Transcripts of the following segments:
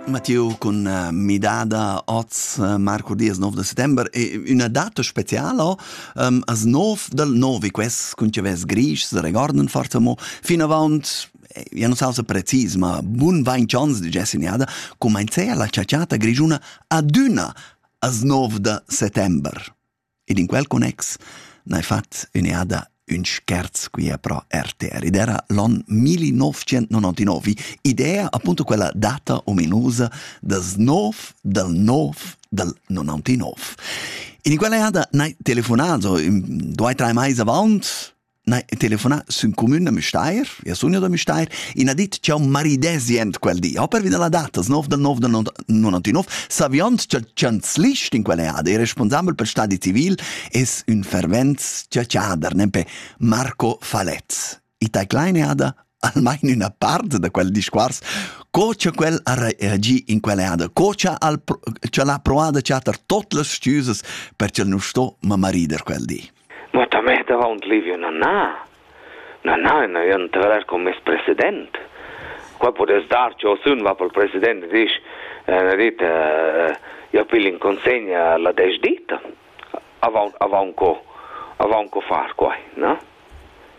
Mathieu con eh, midada oz eh, Marco Diaz 9 de settembre e una data speciala um, as nov dal novi quest con ce ves grisch se recorden forza mo fino avaunt ja non sa precis ma bun vain chance di gessi niada comencea la ciaciata grigiuna aduna as 9 de settembre Ed in quel connex n'hai fat ün'eada ün scherz quia pro RTR. Ed era l'on 1999, idea appunto quella data ominusa das nov dal nov dal 99. In quella eada n'hai telefonà, so, ün, due, drei mais avant, Nei, telefonà sün cumün da Müstair, ia sun da Müstair, in ha dit ch'eu maridesi ent quel di. Ha pervi da la data, 9 del 9 del 99, saviond cha chanzlist in quel eada e responsabel per stadi civil es ün fervent ciaciader, nempe Marco Falez. I tai kleine ada almain üna part da quel discuors co cha quel ha reagi in quell'eada, co cha al, cha l'ha proada chatter tot las stüsas per ch'el nu sto ma marider quel di. Mo ta mett avaunt Livio na na. Na na, na ün traver con meis president. Qua podess dar ch'eu sun va pel president e disch, na dit, io pil in consegna la desdita. Avaunt avaunt co, avaunt co far quai, na?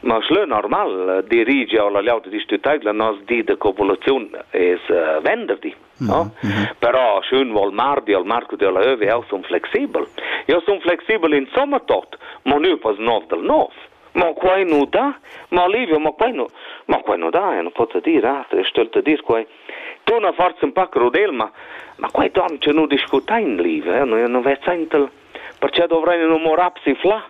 Ma schlö normal dirigi a la liauta distritaivla nos di de copulaziun es uh, venderdi. No? Mm -hmm. Però sch'ün vol mardi al marco della ÖW eu sun flexibel. Eu sun flexibel in somma tot, ma nu pas nov del nov. Ma quai nu da, ma Livio, ma quai nu, ma quai nu da, non pot dir, ah, e stölte dir quai. Tu na forza un po' crudel, ma, ma quai don ce nu discutain, Livio, eh? nu, nu vezaintel, perché dovrei nu morapsi fla?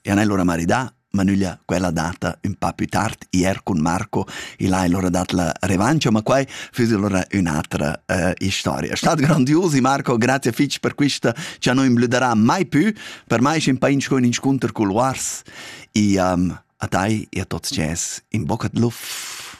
e han allora maridà, ma nüglia quella data ün pa più tard, ier cun Marco, il ha allora dat la revancia, ma quai füss allora ün'atra äh, historia. Stat grandiosi Marco, grazie fitch per quista, cha non imblüderà mai più, per mai schin pain sco ün inscunter cul Wars, e um, a tai e a tots ces in bocca d'luf.